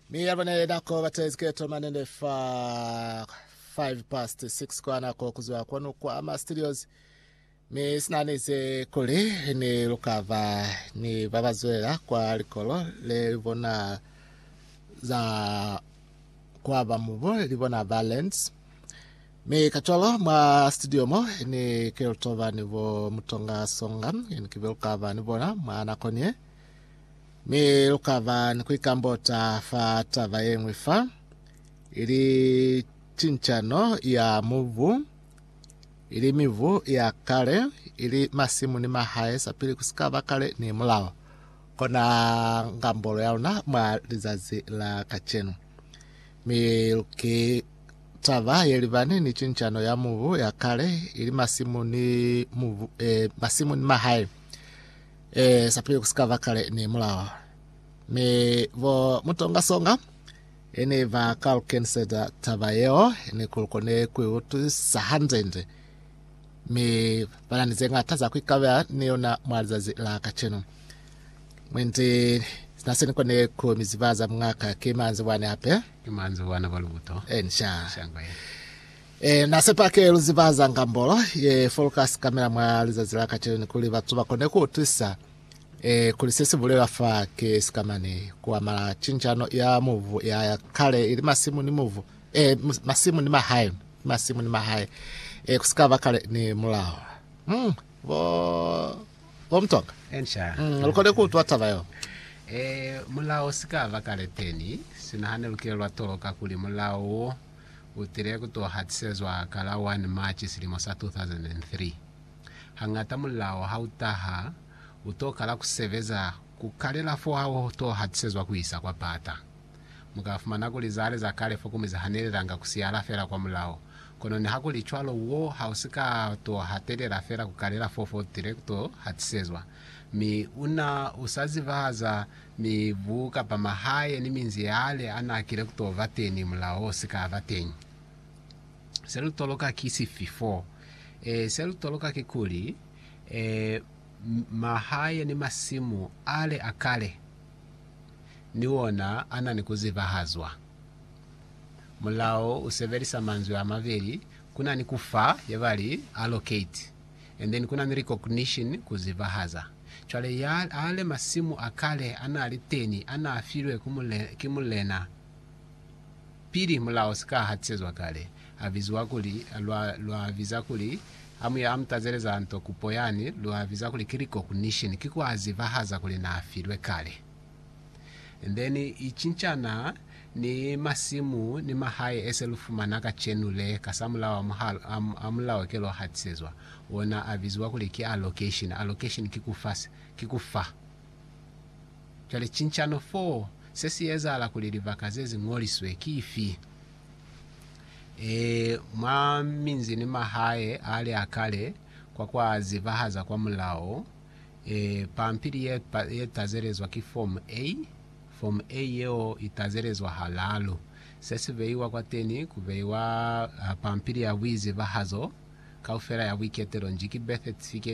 Mi ya bona yena ko batla iziketo manene fa 5 past 6 kwa nako kuzwa kwanu kwa ama studios mi sinanize kuli ni lukava ni babazwela kwa likolo le libona za kwa ba mubo libona balance mi kacwalo mwa studio mo ni ke lutoba ni bo mutonga songa ni kibe lukava ni bona mwa nako nie Mi lu ka ba ni ku ikambota fa taba ye ñwi fa, ili cincano ya mubu, ili mibu ya kale, ili masimu ni mahae sapili ku si ka ba kale ni mulao. Kona ngambolo ya luna mwa lizazi la kacenu. Mi ki taba ye libani ni cincano ya mubu ya kale, ili masimu ni mubu, eh, masimu ni mahae. Ee, sa pili ku si ka ba kale ni mulao. Mi bo mutongasonga e ne ba ka lu keniseza taba yeo ni ku lu kone ku i utwisisa hanzenze. Mi ba na ni ze ñata za ku ikabela ni yona mwa lizazi la kacenu. Mwendi sina se ni kone ku mi ziba za muñ'a ka ki manzibwani hape. Ki manzibwana ba lubuto. Encia. Shangwe. Ee, Na sepa ke lu ziba za ngambolo ye foluka sikamela mwa lizazi la kacenu kuli batu ba kone ku utwisa ee, kuli se si bulelwa fa ki sikamani ku amala cinjano ya mubu ya kale ili masimu ni mubu, ee, masimu ni mahae, masimu ni mahae, ee, ku si ka ba kale ni mulao. Mm, bo, bo Mtonga, Enca. mm, lu kone ku utwa taba yo. Ee, mulao si ka ba kale teni. Sina hane lu ke lwa toloka kuli mulao wo u tile ku to hatisezwa ka la 1 March silimo sa 2003. Hangata mulao ha u taha, u to kala ku sebeza ku kalela fo ha u to hatisezwa ku isa kwa pata. Mu ka fumana kuli za le za kale fo komuzi ha ne li langa ku siyala fela kwa mulao. Kono nihakulicwalo, wo ha u si ka to hatelela fela ku kalela fo fo u tile ku to hatisezwa, mi una u sa ziba za Mibu kapa mahae ni minzi yale a n'a kile ku t'o ba teñi mulao o si ka ba teñi. Se lu toloka ki sifi f'o? Ee, se lu toloka kikuli, mahae ni masimu ale a kale ni ona a na ni ku zibahazwa. Mulao u sebelisa manzwi a mabeli, ku na ni ku fa, ye ba li, allocate. and then kuna ni recognition ku zibahaza. Cwale ya ale masimu a kale anali teni ana filwe ku mule, ki mulena pili mulao sika hatisezwa kale, a biziwa kuli, lwa, lwa biza kuli, ha mu ya mu tazeleza nto kupo yani, lwa biza kuli ki recognition, ki ku a zibahaza kuli na filwe kale. then i cincana ni masimu ni mahae ese lu fumana kacenu le kasamulaho a mulao ke lwa hatisezwa ona a biziwa kuli ki allocation. Allocation ki ku fa, ki ku fa. Cwale cincano fo se si ezahala kuli libaka ze zi ngoliswe ki ifi? E, mwa minzi ni mahae a li a kale kwa kwa zibahaza kwa mulao Pampili ye ye tazelezwa ki fomu A. Fomu A yeo i tazelezwa halalu. Se si beiwa kwateni ku beiwa pampili ya buizibahazo kaufela ya buiketelo nji ki birth certificate,